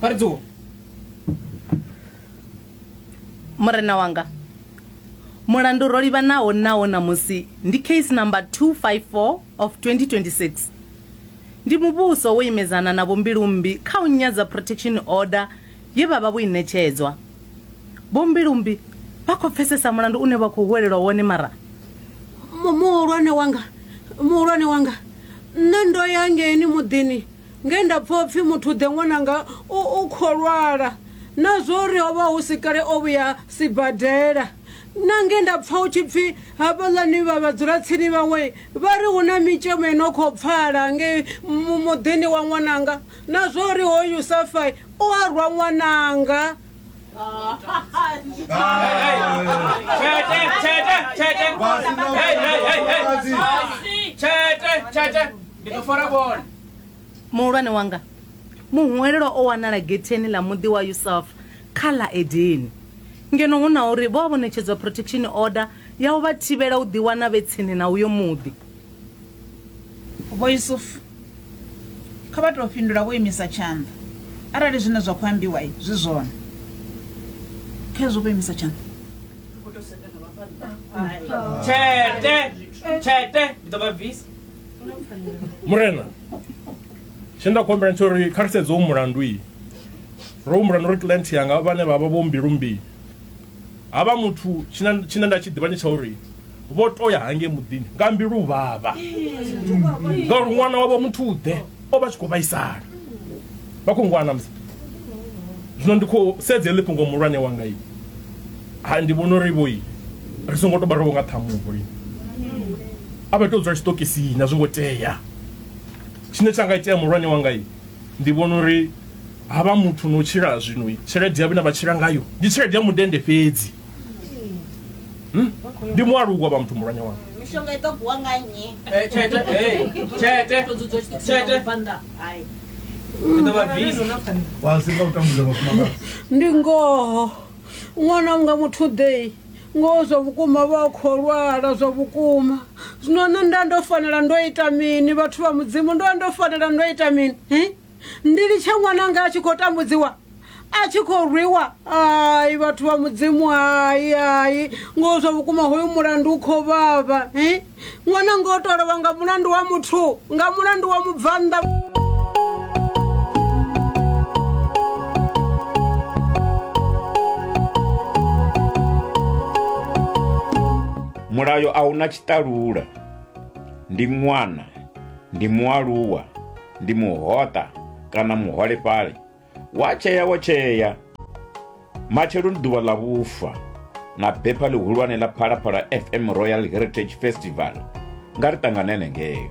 vha ri dzuwa murena wanga mulandu ro livhanaho nawo ṋamusi ndi case number 254 of 2026 ndi muvhuso wo imedzana na vhombilumbi kha u nyadza protection order ye vha vha vho i ṋetshedzwa vhombilumbi vha khou pfesesa mulandu une vha khou huwelelwa wone mara Mu- muhulwane wanga muhulwane wanga nṋe ndo ya ngeni muḓini nge nda pfa upfi muthu ḓe ṅwananga u, u khou lwala na zwo uri ho vha hu si kale o vhuya sibadela na nge nda pfa hu tshi pfi hafhaḽani vha vhadzulatsini vhaṅwe vha ri hu na mitshemo i no khou pfala nge muḓini wa ṅwananga na zwo uri hoyu safai o a rwa ṅwananga Tshete, tshete, tshete. Hey, hey, hey, hey. Tshete, tshete. Ndi ḓo fora bola. muhulwane wanga muhwelelwa o wanala getheni ḽa muḓi wa yusafa kha ḽa edeni ngeno hu na uri vho a vho ṋetshedzwa protection order ya u vha thivhela u ḓiwana vhe tsini na uyo muḓi Vho Yusufu kha vha tou fhindula vho imisa tshanḓa arali zwine zwa khou ambiwa zwi zwone. Khezwo vho imisa tshanḓa. Tshete, tshete, ndi ḓo vha bvisa. Murena, tshe nda khou humbela tsho uri kha ri sedze u mulandu iyi. Ro humbula na uri client yanga vhane vha vha vho mbilu mbi Ha vha muthu tshine tshine nda tshi ḓivha ndi tsha uri vho to ya hangei muḓini nga mbilu vhavha ngauri ṅwana wavho muthu ḓe o vha tshi khou vhaisala vha khou ngwana musi zwino ndi khou sedza heḽi fhungo muhulwane wanga i ha ndi vhona uri vhoi ri songo to vha ro nga ṱhamuho i a vha tou dzula tshiṱokisini a zwi ngo tea tshine tsha nga itea muhulwane wanga i ndi vhona uri ha vha muthu no tshila zwino tshelede ya vhone vha tshila ngayo ndi tshelede ya mudende fhedzi hmm? ndi mualuwa vha muthu mulwanya wanga mishonga i ḓo guwa nga nnyi eh, tshete tshete tshete ndi ngoho ṅwana unga muthu dei ngoho zwa vhukuma vha khou lwala zwa vhukuma zwino nṋe nda ndo fanela ndo ita mini vhathu vha mudzimu ndo ndo fanela ndo ita mini ndi litshe ṅwananga a tshi khou tambudziwa a tshi khou rwiwa ai vhathu vha mudzimu hai hai ngoho zwa vhukuma hoyu mulandu u khou vhavha eh? ṅwananga o tolovha nga mulandu wa muthu nga mulandu wa mubvannḓa mulayo a una tshiṱalula ndi ṅwana ndi mualuwa ndi muhoṱa kana muholefhali wa tshea wo tshea matshelo ndi ḓuvha ḽa vhufa na bepha ḽihulwane ḽa phalaphala fm royal heritage festival nga ri ṱanganene ngeyo